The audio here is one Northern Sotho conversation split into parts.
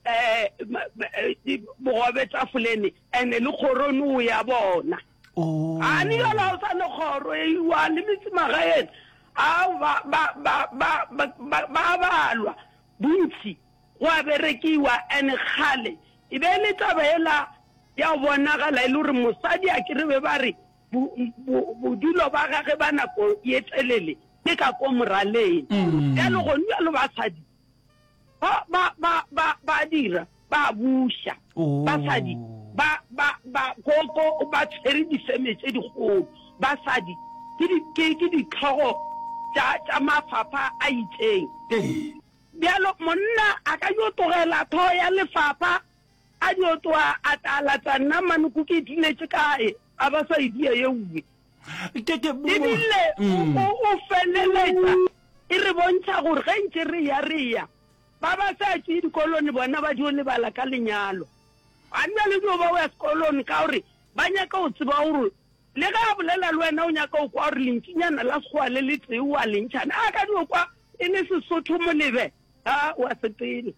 um bogobe tafolene and-e le kgorone o ya bona oh. a ne yola o sane kgoro e iwa le metsimagaeng a ba balwa bontsi go a berekiwa and-e kgale e be e le taba ela ya bonagala e le gore mosadi a ke re be ba re bodulo ba gage ba nako ye telele ke ka ko moraleng mm. jalo gone jalo basadi ba ba ba ba ba dira ba buša Oh. basadi ba ba ba koko ba tshwere difeme tse dikgolo basadi ke di- ke- ke ditlhogo tša tša mafapha a itseng Ee. bjalo monna a ka yo tlogela tho ya lefapha a yo tloa a tala tsa nna mane ko ke diletše kae a ba sa e dia ye uwe ebile mm. o feleletsa e re bontšha gore ge ntse re ya re ya ba ba sa tswe dikolone bona ba dio lebala ka lenyalo ga nna le dio ba o ya sekolone ka gore ba nyaka go tseba gore le ge a bolela le wena o nyaka go kwa gore lentsinyana la segoa le le tee wa lentšhane a ka dio kwa e le sesotho molebe a wa sepele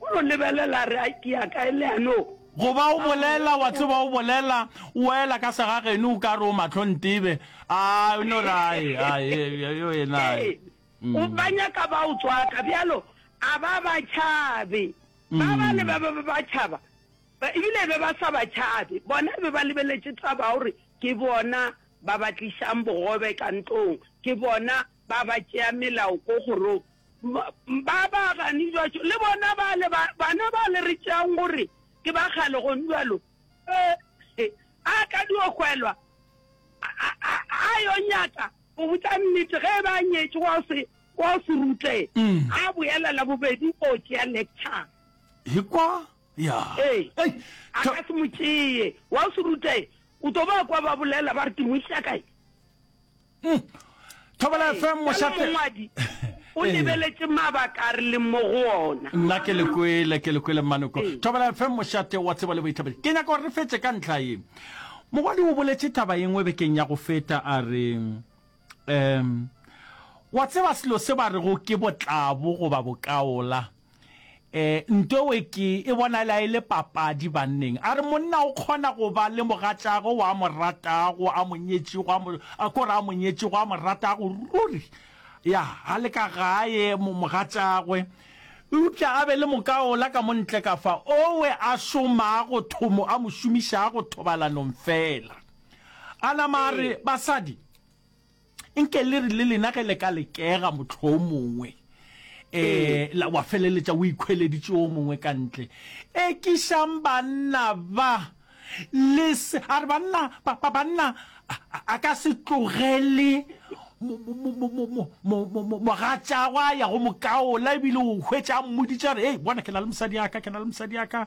O no lebelela a re, Ai, ke ya kae le ano? Goba o bolela, wa tseba, o bolela, o ela ka segageno, o ka re o mahlo ntebe. Ai, o no re, Ai, ai, e, yo yena, ai. Ee, o mm. ba nyaka ba o tswaka, bjalo, a ba ba tšhabe. Ba ba le ba mm. be ba tšhaba, ba- ebile be ba sa ba tšhabe. Bona be ba lebeletše taba ya gore ke bona ba ba tlišang bogobe ka ntlong, ke bona ba ba tšea melao ko kgorong, ba ba gane jwaco, le bona bale ba, bana bale re tšeang gore ke ba kgale, gong jwalo, ee, a ka dio hwelwa, a, a, a yo nyaka go botša nnete, ge eba a nyetše wa se, wa se rute, a boela la bobedi o tšea lecture. Hikwa, ya, Ee, Ei, a tha- ka se mo tšee, wa se rute, o tlo ba kwa ba bolela ba re ke mo isa kae. Hmm. Thobela FM mošate. Mongwadi o eh. lebeletše mabaka a re leng mo go ona. Nna ke le kwele ke le kwele manoko. Eh. Thobela FM mošate wa tseba le boithabedi. Ke nyaka gore re fetse ka ntlha ye. Mogwadi o boletse taba engwe bekeng ya go feta a re um wa tseba selo se ba rego ke botlabo goba bokaola E, nto we ke e bonala e le papadi banneng. A re monna o kgona go ba le mogatšago wa mo ratago, a mo nyetšego, a mo, a kore a mo nyetšego, a mo ratago ruri. Ya, a le ka gae mo, mogatšagwe. Eupša a be le mokaola ka mo ntle ka fa, owe a šomago thomo, a mo šomišago thobalanong feela. A nama a re, Basadi, nke le re le lena ge le ka lekega motlho o mongwe um wa feleletša o ikhweleditše o mongwe ka ntle ekišang banna ba le se a re banna banna a ka se tlogele mogatšagwa ya go mokaola ebile o hwetša mmoditša re ei bona ke na le mosadi yaka ke na le mosadi yaka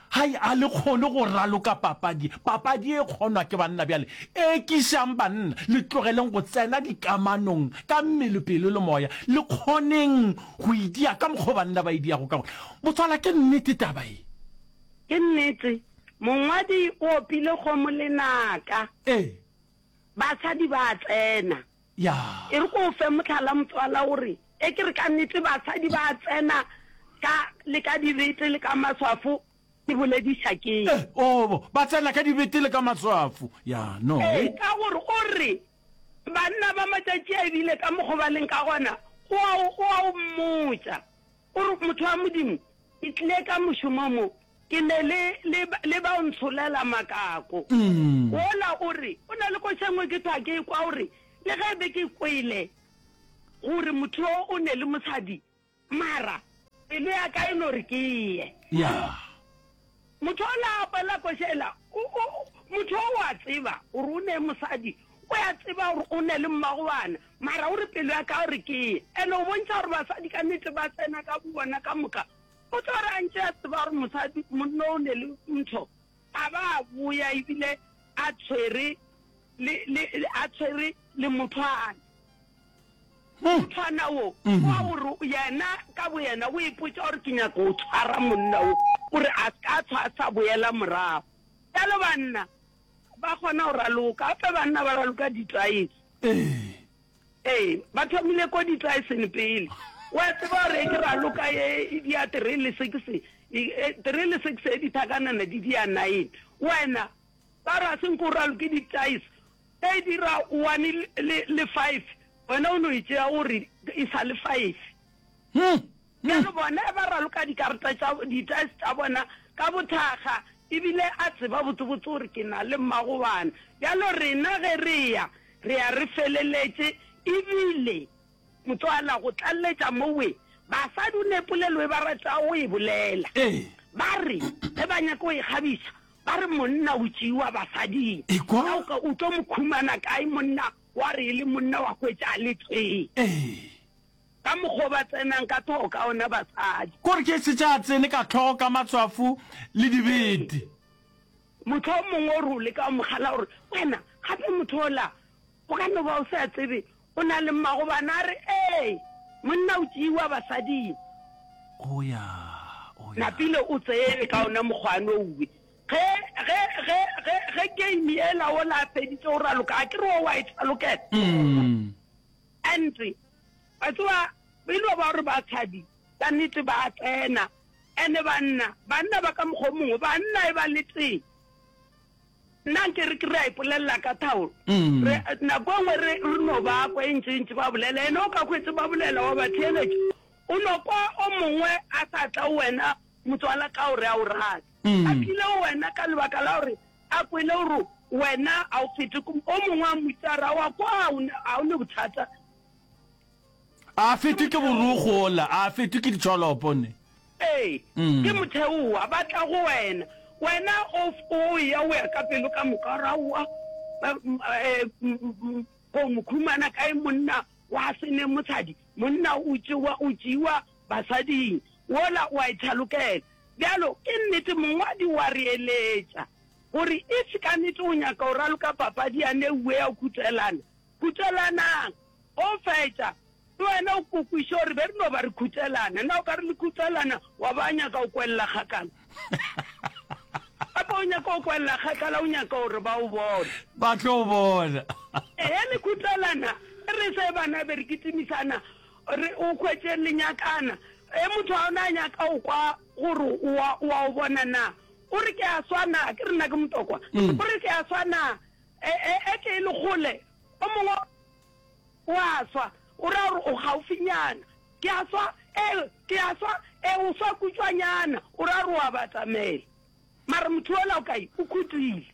Hai, a le kgone go raloka papadi. Papadi e kgonwa ke banna. Bjale ekišang banna, le tlogeleng go tsena dikamanong ka mmele, pelo le moya. Le kgoneng go e dia ka mokgwa o banna ba e diago ka gona. Botswala, ke nnete taba ye? Ke nnete. Mongwadi o opile kgomo lenaka. Ee. Basadi ba tsena. Ya. E re ke o fe mohlala, motswala, o re, Ge ke re ka nnete basadi ba a tsena ka, le ka dibete le ka maswafo, ke bolediša keng? Eh, oo, ba tsena ka dibete le ka maswafo. Ya, no. Ee, ka gore o re, Banna ba matšatši a e bile ka mokgo ba leng ka gona, o a o, o a o mmotša. O re, Motho wa Modimo, ke tlile ka mošomo mo, ke ne le, le, le ba o ntsholela makako. Wola o re, o na le košengwe ke thwa ke kwa, o re, le ge be ke kwele gore motho yo o ne le mosadi, mara pelo ya ka e no re ke ye. Ya. Motho o la apelela koša ela, o, o, motho o a tseba gore o ne mosadi, o a tseba gore o ne le mmagoana, mara o re pelo ya ka o re ke ye. Ene o bontšha gore basadi ka nete ba tsena ka bobona ka moka. O tlo re a ntše a tseba gore mosadi, monna o ne le ntho, a ba a boya ebile a tshwere le, le, a tshwere le mothwana. o tshwana wo wa gore yena ka boyena o ipotsa gore ke nyaka o tshwara monna wo gore a ka tshwa a sa boela morago jalo banna ba kgona go raloka gape banna ba raloka ditlaese ee ba thomile ko ditlaeseng pele wa tseba gore ke raloka e dia three le six three le six e dithakanana di dia nine wena ba ra seng ko raloke ditlaese Ge e dira one le, le five, wena o no e tšea o re e sa le five. Bjalo bona ge ba raloka dikarata tša, di-dice tša bona ka bothakga, e bile a tseba botsebotse gore ke na le mmagobana. Bjalo rena ge re ya, re ya re feleletše. E bile, motswala, go tlaleletša mo, we, basadi o ne polelo e ba ratago go e bolela. Ba re, ge ba nyaka go ikgabiša, Ba re monna o tšeiwa basading. Ekwa. Na o ka o tlo mo khumana kae monna wa re e le monna wa hwetša a le tee? Ee. Ka mokgwa o ba tsenang ka tlhogo ka ona basadi. Ko re ke se tša tsene ka tlhogo ka matswafo le dibete. Mohlomongwe o re o leka go mo kgala gore, Wena, gape motho ola o ka no ba o sa tsebe O na le mmagobana a re, Ee, monna o tšeiwa basading. O ya, o ya. Napile o tsene ka ona mokgwano owe. Ge, ge, ge, ge, ge game ela ola a feditše go raloka, a ke re wa wa e thalokela? Mm. And, wa tseba, e no ba gore basadi ka nnete ba a tsena. And banna, banna ba ka mokgwa o mongwe, banna e ba le tee. Nna nke re ke re a ipolelela ka thaolo. Re, nako e nngwe re, re no ba kwa e ntši-ntši ba bolela, ene o ka hwetše ba bolela, wa ba theeletša. O no kwa o mongwe a sa tla o wena, motswala, ka gore a o rate. A tlile o wena ka lebaka la gore a kwele gore wena a o fete, o mongwe a mmutsara, wa kwa, ga o ne bothata. A fetwe ke borokgo ola, a fetwe ke ditšholopo ne. Ee, ke motheowa, ba tla go wena, wena o o eya o ya ka pelo ka moka, o ra oa ko mokhumana kae monna wa se ne moshadi, monna o tšewa o tšeiwa basading, wola oa e thalokela. Bjalo, ke nnete mongwadi oa re eletša, gore if kanete o nyaka ho raloka papadi yane eo ea ho kutselana, kutselanang. Go fetša, le wena o ko kwiše gore be re no ba re khutelana. Na o ka re le khutelana, wa ba nyaka go kwelela kgakala? Gape o nyaka go kwelela kgakala, o nyaka gore ba o bone. Ba tlo o bona. Ehe, le khutelana, e re se bana be re kitimisana, re o hwetše le nyakana. Ge motho a ona a nyaka go kwa gore wa, wa o bona na? O re ke a swa na? Ke re na ke motokwa. O re ke a swa na? E, e, e ke e le kgole, O mongwe o a swa, o ra gore o gaufinyana. Ke a swa, ee, ke a swa, ee, o swa kutšwanyana, o ra gore o a batamela. Mara motho yola o kae? O khutile.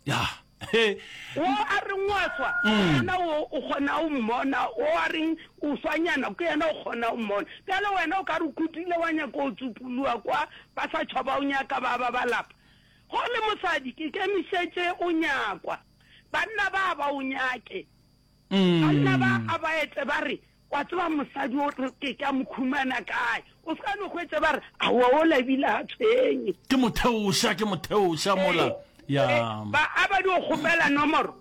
Ya, he. Wo a reng o a swa, ke mm. yena o o kgona o mmona, wo a reng o swanyana, ke yena o kgona o mmona. Bjale wena o ka re o khutile wa nyaka o tsupuluwa kwa, ba sa tšhoba o nyaka ba ba balapa. Go le mosadi, ke kemišetše o nyakwa. Banna ba ba o nyake. Banna ba a ba etse ba re, Wa tseba mosadi o ke ka mo khumana kae? O se ka no go etse ba re, Aowa o labile ha tshwenye. Ke mo theoša, ke mo theoša mola. Ya. Ba a ba di o kgopela nomoro.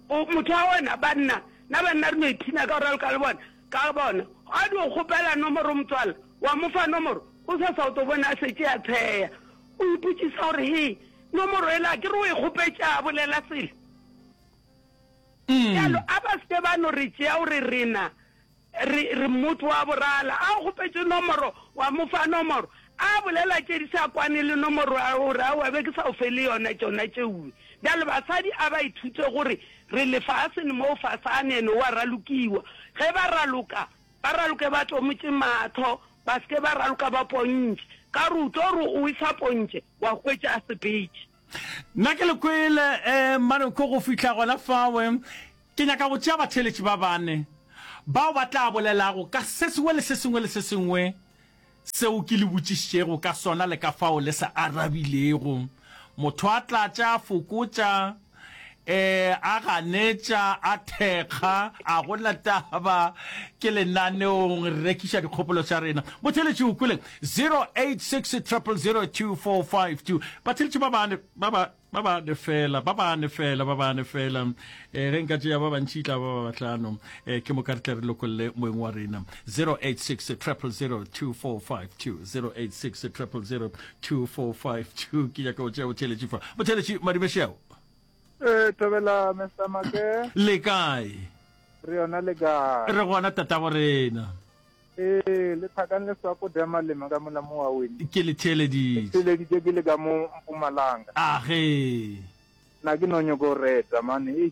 O motho wa wena banna, na banna re no iphina ka go raloka le bona. Ka bona. A di o kgopela nomoro motswala, wa mo fa nomoro, o sa sa o to bona a setse a tsheya. O ipotšisa gore he. Nomoro ela ke re o e kgopetša a bolela selo. Bjalo a ba se ke ba no re tšea o re rena re re motho wa borala. A o kgopetše nomoro wa mo fa nomoro a bolela tše di sa kwane le nomoro ya gago o re aowa be ke sa o fe le yona tšona tšeue. Bjale basadi a ba ithute gore re lefaseng mo fasane and o a ralokiwa. Ge ba raloka ba raloke ba tlomotše mahlo Ba se ke ba raloka ba pontše. Ka re o tlo re o e sa pontše, wa hwetša a se betše. Nna ke le kwele, eh, Maroko, go fihla gona fawe. Ke nyaka go tšea batheeletši ba bane, bao ba tla bolelago ka se sengwe le se sengwe le se sengwe seo ke le botšišitšego ka sona le ka fao le se arabilego. Motho a tlatša, a fokotša. Ee, a ganetša, a thekga, a go na taba ke lenaneong, re rekiša dikgopolo tša rena. Botheletši o kwele 0860002452. Batheletši ba bane, ba ba ba bane fela, ba bane fela, ba bane fela. Eh, ge nka tšea ba bantši tla ba ba batlano. Eh, ke moka re tle re lokolle moeng wa rena. 0860002452. 0860002452. 2452 ke nyaka go tšea botheletši fa botheletši madimešeo ee eh, thabela mr make le kae re yona le kae re gona tatabo rena ee eh, le thakang le swako dia malema ka mola mo wa wene ke le theeleditše theeleditše ke le ka mo mpumalanga age na ke no nyoko reta mane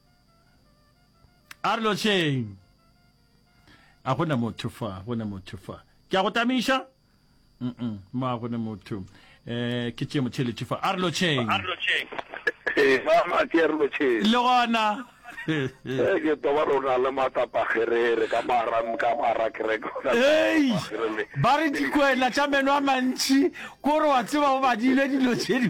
A re lotšheng. A gona motho fa, gona motho fa. Ke a go tamiša? Mm-mm, ma gona motho. Eh, ke tšee motheletši fa. A re lotšheng. Ee, mama, ke re lotšheng. Le gona. Ee, ke toba rona le matsapa gerere ka mara ka mara kereke ona Ei, gerere. ba re dikwena tša meno a mantši, ko re wa tseba o badile dilo tše di.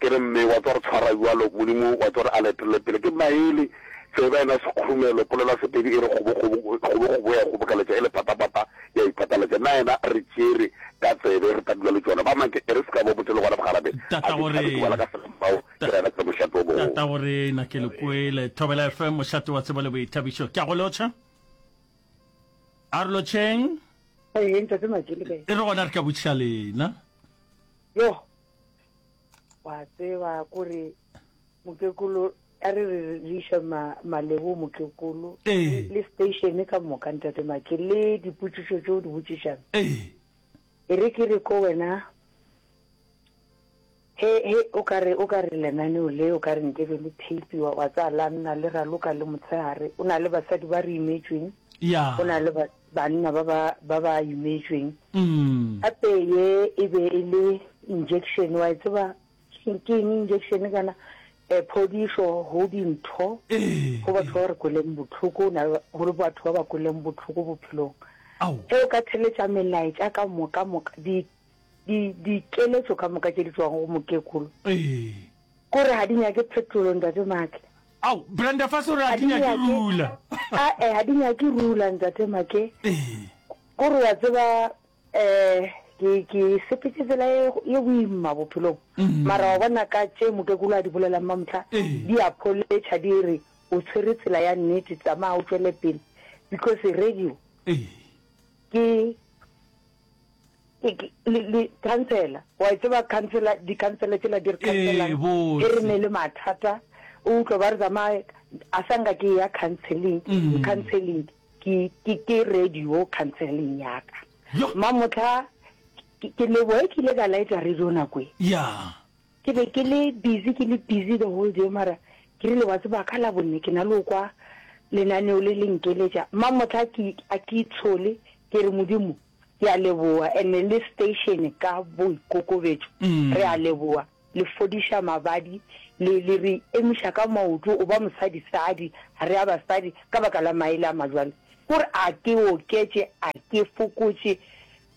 Ke re, Mme, wa tswa re tshwara bjalo, Modimo wa tswa re a le etelele pele. Ke maele, tseba yena sekgurumelo, polela Sepedi e re kgobokgobo, kgobokgobo ya ikgobokeletša, e le patapata ya ipataletša. Na yena a re tšere ka tsebe, re tla dula le tšona. Ba make, e re se ka bo botse le gona bogarabe, a ke tšhabe, ke ngwala ka sefao, ke rera ke re, Mošate o mogolo. Tatagorena, ke le kwele. Thobela FM, Mošate wa Tsebo le Boithabišo. Ke a go lotšha. A re lotšheng. Ee, Ntate Majele, kae? E re gona re ka botšiša lena. Yoh! wa tseba kore mokekolo a re re re iša malebo mokekolo le station ka moka ntate make le dipotsiso tse o di botsišang e re ke re ko wena he he o ka re o ka re lenaneo le o ka re nke be le tape wa wa tsa la nna le raloka le motshehare o na le basadi ba re imetsweng o na le banna ba ba, ba ba imetšweng. Gape ye e be e le injection, wa e tseba ke eng injection kana? E, phodišo go dintho, go batho ba re kweleng bohloko, o na le, go le batho ba ba kweleng bohloko bophelong. Ge o ka theletša melaetša ka moka, moka, di, di, dikeletšo ka moka tše di tšwago go mokekolo, kore ga di nyake phetolo, Ntate Mark, Ao, Brenda fase o re ha ke nyake rula. Ae, ha ke nyake rula, Ntate Make. Ko re wa tseba, eh, ke, ke sepetse tsela e, e boima bophelong. Mm. Mara wa bona ka tše mokekolo a di bolelang mamotla, di a pholetša, di re, o tshwere tsela ya nnete, tsamaya o tšwele pele. Because radio, ke, khansela wa e tseba khansela dikhansela tsela di re khansela e re ne le mathata o utlwa ba re tsamaye a sa nka ke ya counseling mm. counseling ke ke ke radio counseling ya ka mma motlha ke leboe ke ile ka laetsa radio nako e ya Ke be ke le busy ke le busy the whole day mara ke rile wa tseba ka Labone ke na le go kwa lenaneo le le nkeletša. Mma mohla a ke a ke itshole ke re Modimo ke a leboga and le station ka boikokobetšo re a leboga le fodiša mabadi le le re emiša ka maoto o ba mosadi sadi ga re a basadi ka baka la maele a majwale. Ke gore a ke oketše a ke fokotše.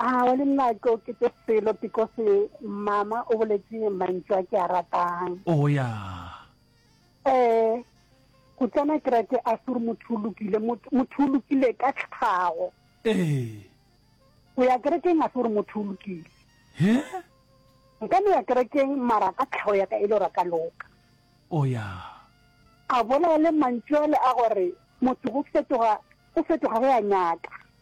A wa le nna ke okete pelo because mama o boletse mantšu a ke a ratang. Oh ya. Eh Kutlana ke rate a sure motho o lokile motho o lokile ka tlhago. Eh. O ya kerekeng a sure motho o lokile. He? Nka no ya kerekeng mara ka tlhago ya ka e le ra ka loka. Oh ya. A bolela le mantšu ale a gore motho go fetoga go fetoga go ya nyaka.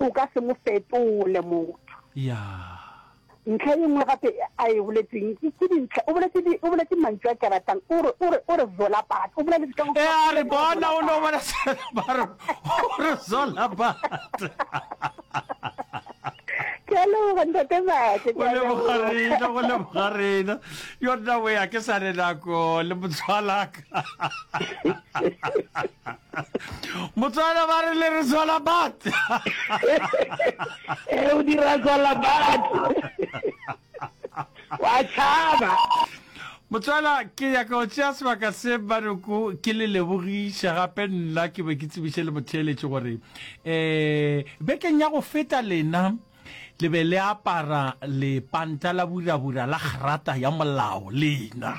O ka se mo fetole motho. Yeah. Ntlha e nngwe gape a e boletseng ke ke dintlha o boletse di o boletse mantšu a ke a ratang o re o re o re zola bat o boleletse ka go E a re bona o no bona se ba re o re zola bat. ke a leboga ntate Mate, ke o a leboga leboga. rena go leboga rena yo nna we a ke sa re nako le motshwalaka Motswana ba re le re tswala bat. Eh o dira tswala bat. Wa tshaba. Motswana ke ya ka o tšea sebaka se Baroko ke le lebogiša gape nna ke be ke tsebiše le motheeletše gore eh bekeng ya go feta lena le be le apara lepanta la burabura la gerata ya molao lena.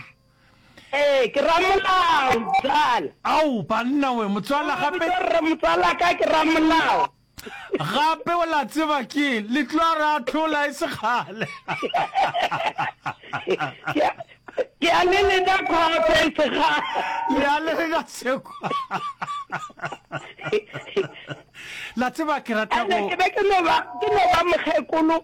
Ee, ke ramolao, motswala. Ao, banna we, motswala, gape. Bitšwa rre motswala ka ke ramolao. Gape o la tseba ke eng? Le tlo re ahlola e se kgale. Ke a le leka khotho e se kgale. Le a le leka sekwa. La tseba ke rata go. Ke be ke no ba mokgekolo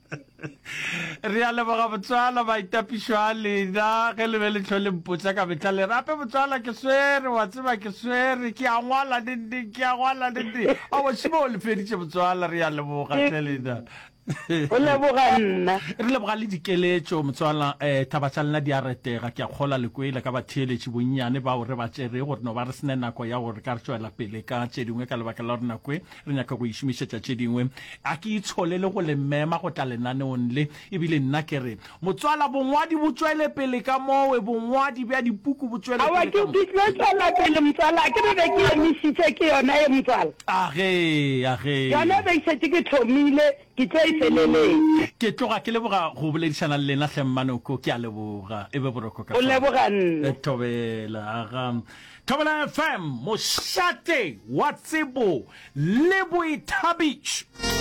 re a leboga botswala baitapišo a lena ge le be le tlho le mpotsa ka metla le rape botswala ke swere wa tseba ke swere ke a ngwala nende ke a ngwala nende a wasimo o le feditše botswala re a leboga tle lena o leboga nna re leboga le dikeletšo motswala um taba tša lena di a retega ke a kgola lekwele ka batheeletši bonnyane bao re ba tšerego re no ba re sene nako ya gore ka re tšwela pele ka tše dingwe ka lebaka la gore nakoe Re nyaka go e šomišetša tše dingwe. A ke itsholele go le mema go tla lenaneong le. Ebile nna ke re, Motswala, bongwadi bo tšwele pele ka mowe, bongwadi bja dipuku bo tšwele Aowa, pele ke, ka ke mowe. tlo tšwela pele, motswala. A ke re be ke emišitše, ke yona ye, motswala. A ge, a ge. Yona e be ke šetše ke thomile, ke tlo e feleletša. Ke tloga ke leboga go boledišana le lena, hle Mmanoko. Ke a leboga. E be boroko ka Go kwano. leboga nna. Thobela, aga. Thobela FM, mošate wa tsebo le boithabišo.